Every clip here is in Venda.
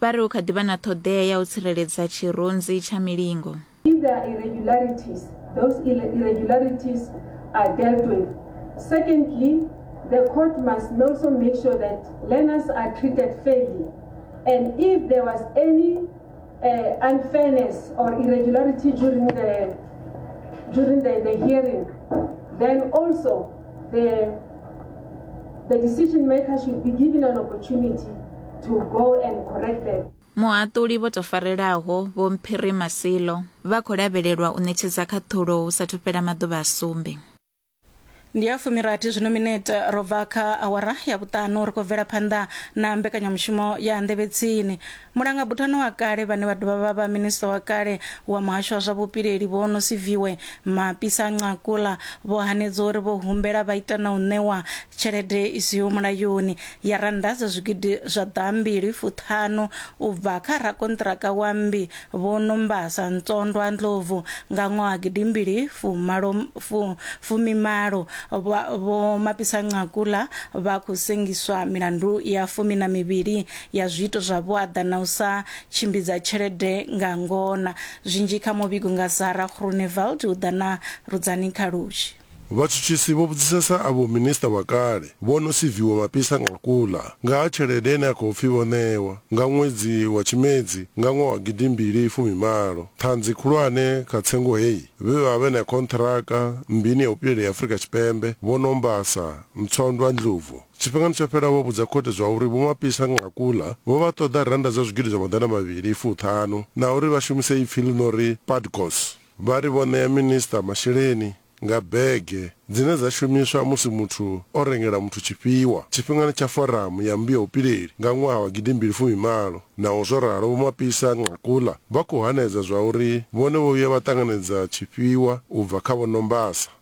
Vha ri hu kha ḓi vha na ṱhoḓea ya u tsireledza tshirunzi tsha milingo. If there are irregularities, those irregularities are dealt with. Secondly, the court must also make sure that learners are treated fairly. And if there was any uh, unfairness or irregularity during the during the, the hearing, then also the, the decision maker should be given an opportunity to go and correct them. muhaṱuli vho tou farelaho vho mphiri masilo vha khou lavhelelwa u ṋetshedza khaṱhulo hu sathu fhela maḓuvha a sumbe ndi ya fumirathi zwino minete ro bva kha awara ya vhuṱanu ri khou bvela phanḓa na mbekanyamushumo ya nḓevhetsini Mulangabuthano wa kale vhane vha dovha vha vha Minisiṱa wa kale wa Muhasho wa zwa Vhupileli Vho Nosiviwe Mapisa-Nqakula vho hanedza uri vho humbela vha ita na u ṋewa tshelede i siho mulayoni ya rannda dza zwigidi zwa ḓaambili fuṱhanu u bva kha rakonṱiraka wa mmbi Vho Nombasa Ntsondwa Ndlovu nga ṅwaha gidimbili fumalo fumimalo. Vho Mapisa-Nqakula vha khou sengiswa milandu ya fumi na mivhili ya zwiito zwa vhuaḓa na u sa tshimbidza tshelede nga ngona. Zwinzhi kha muvhigo nga Sarah Groenewald hu ḓa na Rudzani Khalushi. Vhatshutshisi vho vhudzisesa avho minisiṱa wa kale vho no siviwa mapisa nga kuḽa nga ha tshelede ine ya khou pfi vho ṋewa nga ṅwedzi wa Tshimedzi nga ṅwaha wa gidi mbili fumi malo. Ṱhanzi khulwane kha tsengo heyi vhe vha vhe na khonṱhiraka mmbini ya vhupileli ya Afrika Tshipembe Vho Nombasa Mtswandwa Ndlovu. Tshifhingani tsho fhelaho vho vhudza khothe zwa uri Vho Mapisa-Nqakula vho vha ṱoḓa rannda dza zwigidi zwa maḓana mavhili fu ṱhanu na uri vha shumise ipfi ḽi no ri Padgos. Vha ri vho ṋea minisiṱa masheleni nga bege dzine dza shumiswa musi muthu o rengela muthu tshifhiwa tshifhingani tsha foramu ya mmbi ya vhupileli nga ṅwaha wa gidi mbili fumi malo. Naho zwo ralo Vho Mapisa-Nqakula vha khou hanedza zwa uri vhone vho vhuya vha ṱanganedza tshifhiwa u bva kha Vho Nombasa.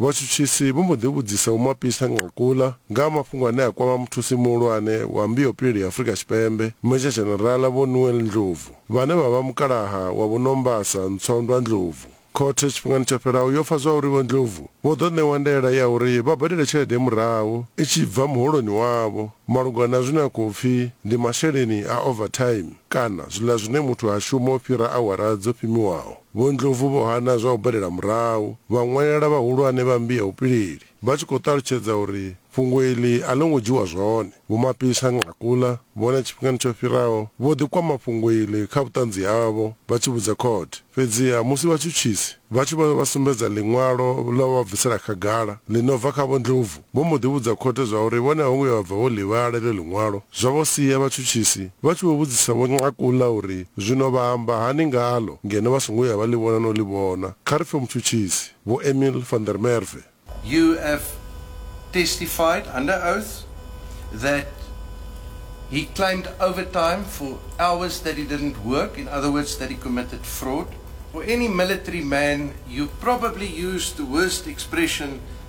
Vhatshutshisi vho mbo ḓi vhudzisa Vho Mapisa Nqakula nga ha mafhungo ane a kwama muthusi muhulwane wa Mbiopili ya Afrika Tshipembe, Meja Dzhenerala Vho Noel Ndlovu, vhane vha vha mukalaha wa Vho Nombasa Ntswandwa Ndlovu. Khothe tshifhingani tsho fhelaho yo pfa zwauri Vho Ndlovu vho ḓo ṋewa ndaela ya uri vha badele tshelede murahu i tshi bva muholoni wavho malugana na zwine a khou pfi ndi masheleni a overtime kana zwiḽa zwine muthu ha shuma u fhira awara dzo pimiwaho. Vho Ndlovu vho hana zwa u badela murahu, vha ṅwalela vhahulwane vha mmbi ya vhupileli vha tshi khou ṱalutshedza uri fhungo iḽi a ḽo ngo dzhiwa zwone. Vho Mapisa Nqakula vhone tshifhingani tsho fhiraho vho ḓi kwama fhungo iḽi kha vhuṱanzi havho vha tshi vhudza khothe, fhedziha musi vhatshutshisi vha tshi vha vha sumbedza ḽiṅwalo ḽa u vha bvisela khagala ḽi no bva kha Vho Ndlovu, Vho mbo ḓi vhudza khothe zwa uri vhone a vho ngo vhuya vha bva vho ḽi vhala iḽo ḽiṅwalo, zwa vho sia vhatshutshisi vha tshi vho vhudzisa Vho Nqakula uri zwino vha amba hani ngaḽo ngeno vha songo vhuya vha ḽi vhona na u ḽi vhona. Kha ri pfe mutshutshisi, Vho Emil van der Merwe. You have testified under oath that he claimed overtime for hours that he didn't work, in other words that he committed fraud. For any military man you probably used the worst expression